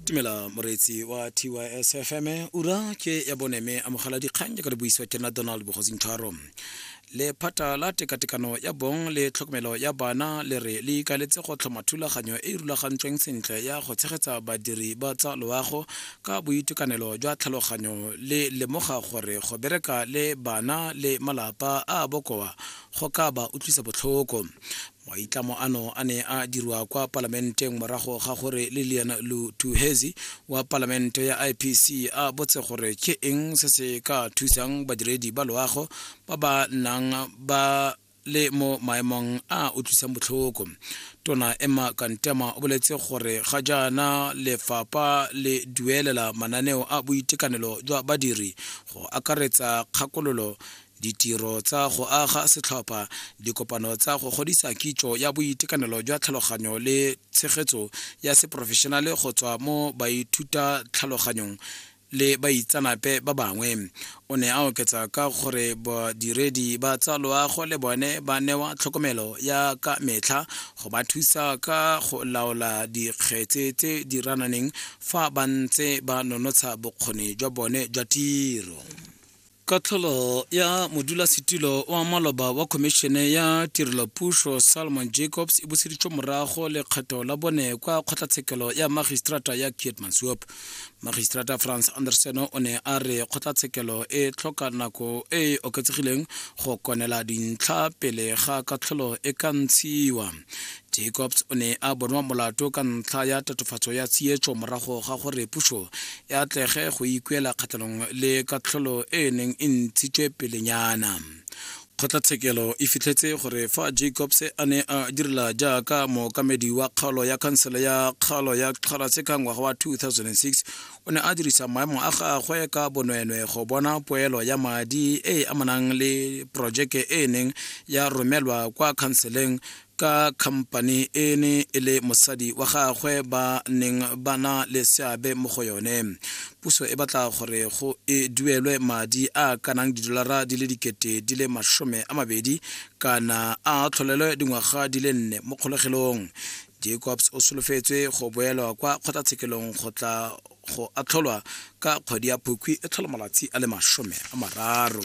tumela moreetsi wa tys fm ura ke ya bone mme amogela dikgang jaaka di buisiwa ke nna donald bogosi ntshwaro lephata la tekatekano ya bong le tlhokomelo ya bana le re le ikaletse go tlhoma thulaganyo e e rulagantsweng sentle ya go tshegetsa badiri ba tsa loago ka boitekanelo jwa tlhaloganyo le lemoga gore go bereka le bana le malapa a bokoa go ka ba utlwisa botlhoko Maitlamo ano a ne a dirwa kwa palamenteng morago ga gore Lilian Lutuhezi wa palamente ya IPC a botse gore ke eng se se ka thusang badiredi ba loago ba ba nang ba le mo maemong a utlwisang botlhoko tona emma kantema o boletse gore ga jaana lefapha le duelela mananeo a boitekanelo jwa badiri go akaretsa kgakololo ditiro tsa go aga setlhopha dikopano tsa go godisa kitso ya boitekanelo jwa tlhaloganyo le tshegetso ya seporofešenale go tswa mo baithuta tlhaloganyong le baitsanape ba bangwe o ne a oketsa ka gore badiredi ba tsa loago le bone ba newa tlhokomelo ya ka metlha go ba thusa ka go laola dikgetse tse di rananeng fa ba ntse ba nonotsha bokgoni jwa bone jwa tiro katlholo ya modulasetilo wa maloba wa khomišene ya tirelopušo salomon jacobs e buseditswe morago lekgetho la bone kwa kgotlatshekelo ya magistrata ya kietmansop magistrata france anderson o ne a re kgotlatshekelo e tlhoka nako e e oketsegileng go konela dintlha pele ga katlholo e ka ntshiwa jacobs o ne a bonwa molato ka ntlha ya tatofatso ya tsietso morago ga gore puso e atlege go ikuela kgatlhanong le katlholo e e neng e ntshitswe pelenyana kgotlatshekelo e fitlhetse gore fa jacobs a ne a direla jaaka mookamedi wa kgaolo ya khansele ya kgaolo ya kgalase ka ngwaga wa 2006 o ne a dirisa maemo a gagwe ka bonwenwe go bona poelo ya madi e e amanang le porojeke e e neng ya romelwa kwa khanseleng ka khampani e ne e le mosadi wa gagwe ba neng ba na le seabe mo go yone puso e batla gore go e duelwe madi a kanang didolara di le dikete di le masome a mabedi kana a tlholelwe dingwaga di le nne mo kgolegelong jacobs o solofetswe go boelwa kwa kgotlatshekelong go tla go atlholwa ka kgwedi ya phukwi e tlhola malatsi a le masome a mararo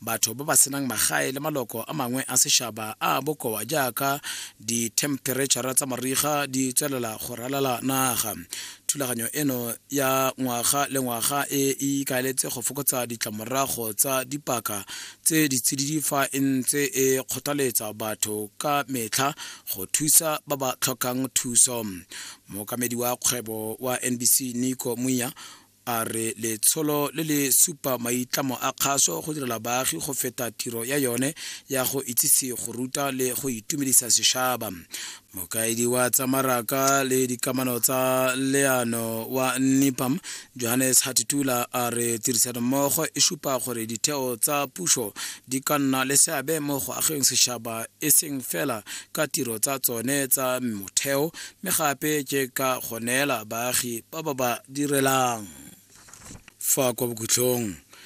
batho ba ba senang magae le maloko a mangwe a sešaba a bokoa jaaka dithemperetšhara tsa mariga di tswelela go ralala naga thulaganyo eno ya ngwaga le ngwaga e e ikaeletse go fokotsa ditlamorago tsa dipaka tse di tsididi fa e ntse e kgothaletsa batho ka metlha go thusa ba ba tlhokang thuso mookamedi wa kgwebo wa nbc nico muya a re letsholo le le supa maitlamo a kgaso go direla baagi go feta tiro ya yone ya go itsise go ruta le go itumedisa sešaba mokaedi wa tsa maraka le dikamano tsa leano wa nipam johannes hatitula a re tirisanommogo e supa gore ditheo tsa puso di ka nna le seabe mo go ageng sešaba e seng fela ka tiro tsa tsone tsa motheo mme gape ke ka go neela baagi ba ba ba direlang fa kwa bokhutlhong